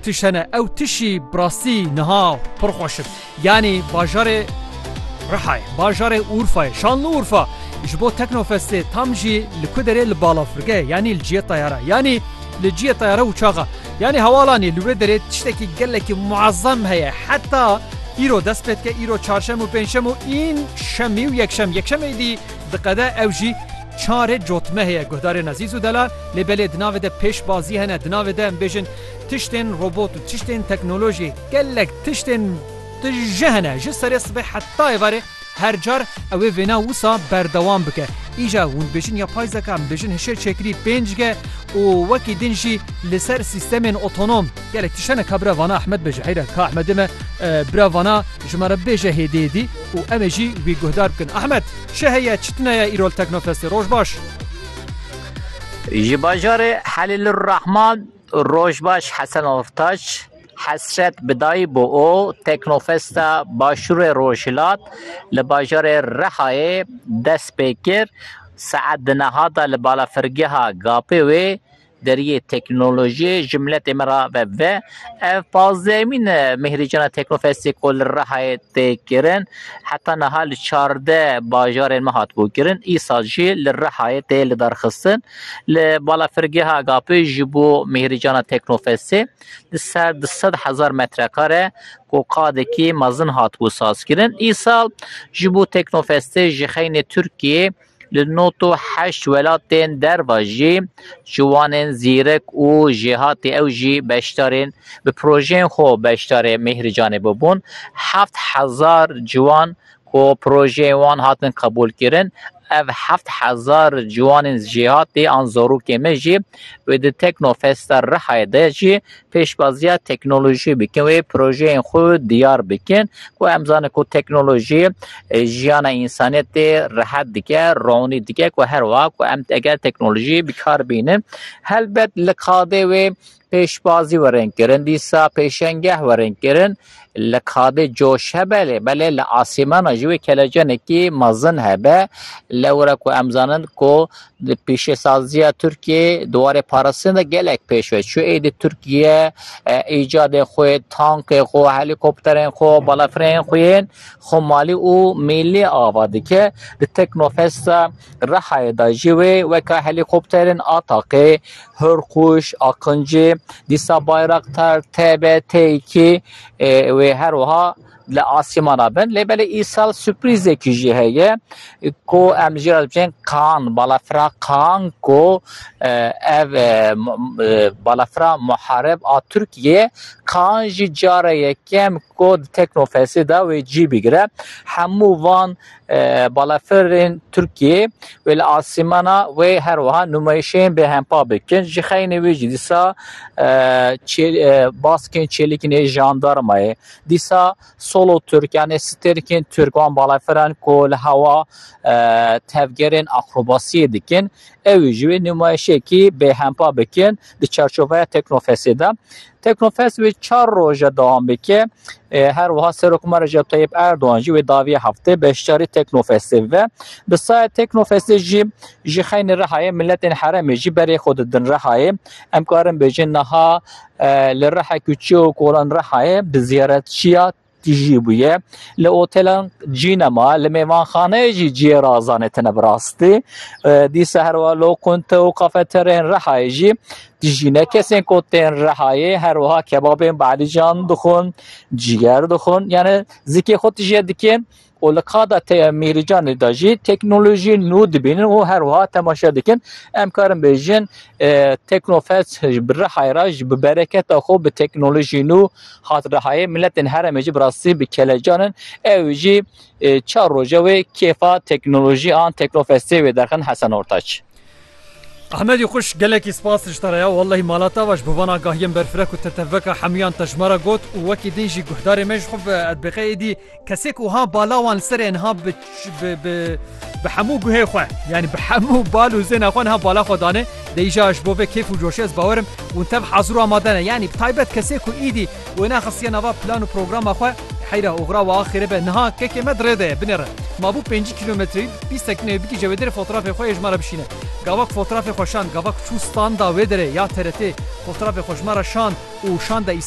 Tiş hene ew tişî bi rastî niha pir xweş in. Yanî bajarê Rihayê, bajarê Urfayê, Şanlıurfa ji bo Teknofestê tam jî li ku derê li balafirgehê yanî li ciyê tayara yanî li ciyê tayara uçaxa yanî hewalanê li wê derê tiştekî gelekî muezzem heye heta îro dest pê dike îro çarşem û pêncşem û în şemî û yekşem yekşem êdî diqede ew jî Çare cotme heye guhdarên Ezîz û Delal lê belê di navê de pêşbazî hene di navê de em bêjin tiştên robot û tiştên teknolojî gelek tiştên di ji hene ji serê sibê heta êvarê her car ewê vêna wisa berdewam bike îja hûn bêjin ya pay zeka em bêjin hişê çêkirî pênc ge û wekî din jî li ser sîstemên otonom gelek tişt hene ka bira vana Ahmed bêje heyre ka Ahmedê me bira vana ji me re bêje hêdî hêdî û em ê jî wî guhdar bikin Ahmed. Çi heye çi tune ye îrol Teknofestê? Roj baş. Ji bajarê Helîlurrahman Rojbaş Hesen Ortaç hesret bi dayî bû û Teknofesta Başûrê Rojhilat li bajarê Rihayê dest pê kir. Saet di niha de li balafirgeha GAP'ê wê Deriyê teknolojiyê ji miletê me re ve ve. Ev pazdehemîn e Mihrijana Teknofestê ku li Rihayê tê kirin. Heta niha li çardeh bajarên me hatibû kirin. Îsal jî li Rihayê tê lidarxistin. Li balafirgeha Agapê ji bo Mihrijana Teknofestê di ser du sed hezar metrekare ku qadekî mezin hatibû sazkirin. Îsal ji bo Teknofestê ji xeynê Tirkiyeyê Li nod û heşt welatên derve jî ciwanên zîrek û jêhatî ew jî beşdarên bi projeyên xwe beşdarê Mîhrîcanê bûbûn. Heft hezar ciwan ku projeyên wan hatin qebûlkirin, ev heft hezar ciwanên jêhatî an zarokên me jî wê di Teknofesta Rihayê de jî pêşwaziya teknolojiyê bikin wê projeyên xwe diyar bikin ku em zanin ku teknolojiyê jiyana însaniyetê rehet dike, ronî dike ku her wiha ku em eger teknolojiyê bi kar bînin helbet li qadê wê pêşwazî werin kirin dîsa pêşengeh werin kirin. li kabê coş hebe lê belê li asîmana jî wê kelecenekî mezin hebe. Lewra ku em zanin ku di pîşesaziya Tirkiyeyê di warê parastina de gelek pêş ve çû. Êdî Tirkiye îcadên xwe yê, tankên xwe, helîkopterên xwe, balafireyên xwe yên xwemalî û mîllî ava dike. Di Teknofesta Rihayê de jî wê weka helîkopterên Ataqê, Hurkuş, Aqinci, dîsa Bayraktar, TB, T2 wê her wiha li asîmana bin. Lê belê îsal sürprîzekî jî heye ku em li jê re dibêjin Kaan, balafira Kaan ku ev balafira Muhareb a Tirkiyê ye. Kaan jî cara yekem ku di Teknofestê de wê cî bigire. Hemû van balafirên Tirkiyê wê li asîmana wê her wiha nûmayîşên bêhempa bikin. Ji xeynê wê jî dîsa baskên çêlikên ê jandarmayê, dîsa solo Tirk yanê stêrkên Tirk wan balafiran ku li hewa tevgerên akrobasiyê dikin, ew jî wê nûmayîşekî bêhempa bikin. Di çarçoveya Teknofesê de Teknofes wê çar roje dewam bike. E, her wiha Serokma Recep Tayyip Erdoğan jî wê daviye heftê beşdarî Teknofesê ve. Bi saya Teknofesê jî ji xeynê Rihayê miletên heremê jî berê xwe didin Rihayê. Em karin bêjin niha e, li Riha Küçük û Kolan Rihayê bi ziyaretçiya Tijî bûye li otelan cî nema, li mêvanxaneyê jî ciyê razanê tine bi rastî. Dîsa her wiha lokunte û kafeteryayên Rihayê jî tijî ne. Kesên ku tên Rihayê her wiha kebabên bi Elîcan dixwin, ciger dixwin. Yanî zikê xwe tijî dikên û li qada te ya Mêrîcanê de jî teknolojiyên nû dibînin û her wiha temaşe dikin. Em karin bêjin Teknofest bi Rihayê re ji bi bereketa xwe bi teknolojiyên nû hat Rihayê. Miletên herêmê jî bi rastî bi kelecan in. Ew jî çar roje wê kêfa teknolojî an Teknofestê wê derxin Hesen Ortaç. Ahmedî xwişk gelekî spas li te re ya wellahî mala te va ji bo van agahiyên berfirek û teteveka hemûyan te ji me re got û wekî din jî guhdarê me ji xwe ve edbêxe êdî kesek wiha bala wan li serê niha bi bi bi hemû guhê xwe yanî bi hemû bal û zêna xwe niha bala xwe dane dê îja ji bo vê kêf û coşê ez bawerim û tev hazir û amade ne yanî bi taybet kesê ku êdî Wê nexistiye nava plan û programa xwe. Heyra oxira wa axêrê be niha kekê me di rê de ye, binê re. Ma bû pêncî kîlometreyî, bîst sekineyê bigihce wê derê fotrafê xwe yê ji me re bişîne. Gavak fotrafê xwe şand, gavak çû standa wê derê ya TRT'ê, fotrafê xwe ji me re şand û şanda